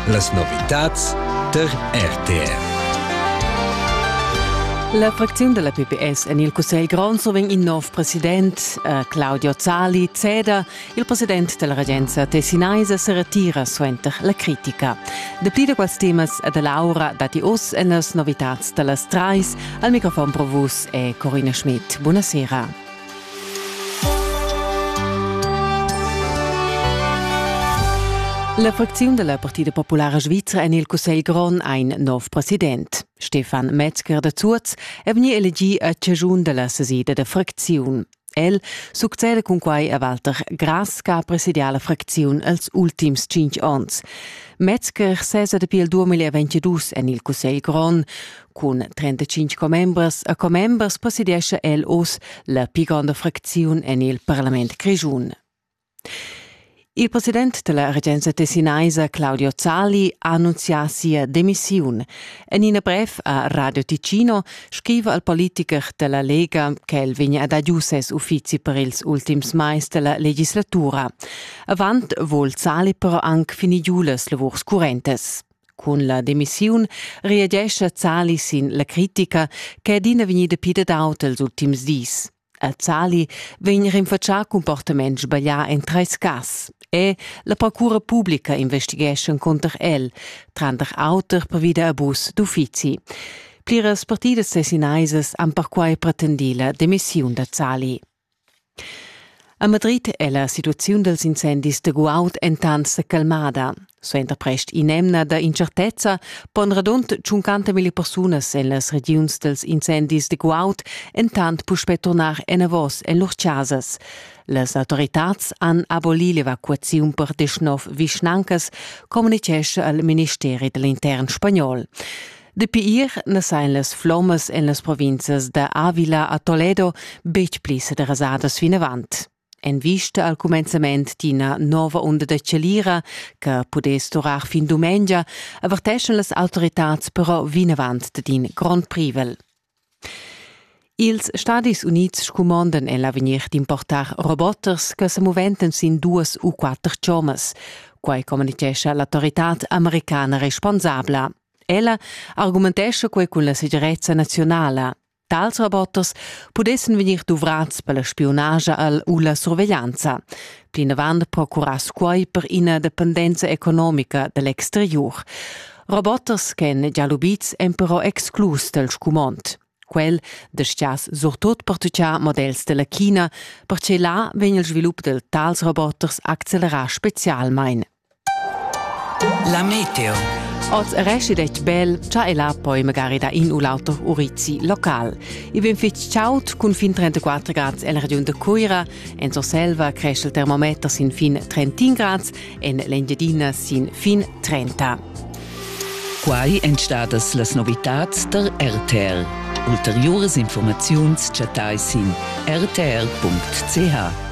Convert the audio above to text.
Las novitads tar RTR. La fracziun della PPS en il Cussegl grond so vegn in nov president, eh, Claudio Zali, ceda. Il president della regenza Tessinaisa se retira suenter la critica. Dapli da quels temas e dell'aura dati oss en las novitats dellas trais. Al microfon pro vus è Corina Schmidt. Buonasera. La fracziun dalla Partida Populara Svizra en il Cussegl grond ha in nov president. Stefan Metzger da Zuoz è vegni elegì a chaschun dalla sesida da fracziun. El succeda cun quai a Walter Grass che ha presidià la fracziun els ultims cinc onns. Metzger sesa dapi il 2022 en il Cussegl grond. Cun 35 commembers e commembers presidiescha el oz la pli gronda fracziun en il parlament grischun. Il president della regenza tessinaisa Claudio Zali ha annunzià sia demissiun. En in brev a Radio Ticino scriva al politiker della Lega che el vegna ad giu ses uffizi per ils ultims mais della legislatura. Avant vol Zali però anche finir giu las lavurs currentes. Cun la demissiun reagescha Zali sin la critica che è adina vegnida pidadauta els ultims dis. A Zali vegn rinfatschà comportament sbaglià en treis cas e la procura publica investighescha cunter el, tranter auter pervi da abus d'uffizi. Pliras partidas tessinaisas han perquai pretendì la demissiun da Zali. A Madrid è la situaziun dals incendis da guaud entant sa calmada. Suenter prest in'emna da incertezza pon radund 50.000 persunas en las regiuns dals incendis da guaud entant puspè turnar enavos en lur chasas. Las autoritads han abolì l'evacuaziun per 19 vischnancas, communitgescha il ministeri da l'intern spagnol. Dapi ir ne sein las flommas en las provinzas da Avila a Toledo betg pli sederasadas vinavant. En vista al cumenzament d'ina nova onda da celira che pudess durar fin dumengia, averteschan las autoritads però vinavant d'in grond privel. Ils Stadis Unids scumondan en l'avegnir d'importar roboters che sa muventan sin duas u quatter chommas. Quai communitgescha l'autoritad americana responsabla. Ella argumentescha quei cun la segirezza nazionala. Tals roboters pudessan vegnir duvrads per la spionagia al u la surveglianza. Plinavant procurass quai per ina dependenza economica da l'exteriur. Roboters ch'èn gia lubids èn però exclus dal scumond. Quel destiass surtut per tutgiar models della China, perche là vegn il svilup del tals roboters accelerà specialmein. La meteo. Oz resti detg bel, cha el ha poi magari da in u l'auter urizi local. I vegn fitg chaud cun fin 34 grads en la regiun de Cuira. En Surselva cresce il termometer sin fin 31 grads, en l'Engiadina sin fin 30. Quai èn stadas las novitads der RTL. Ulteriuras informaziuns chattai sin rtl.ch.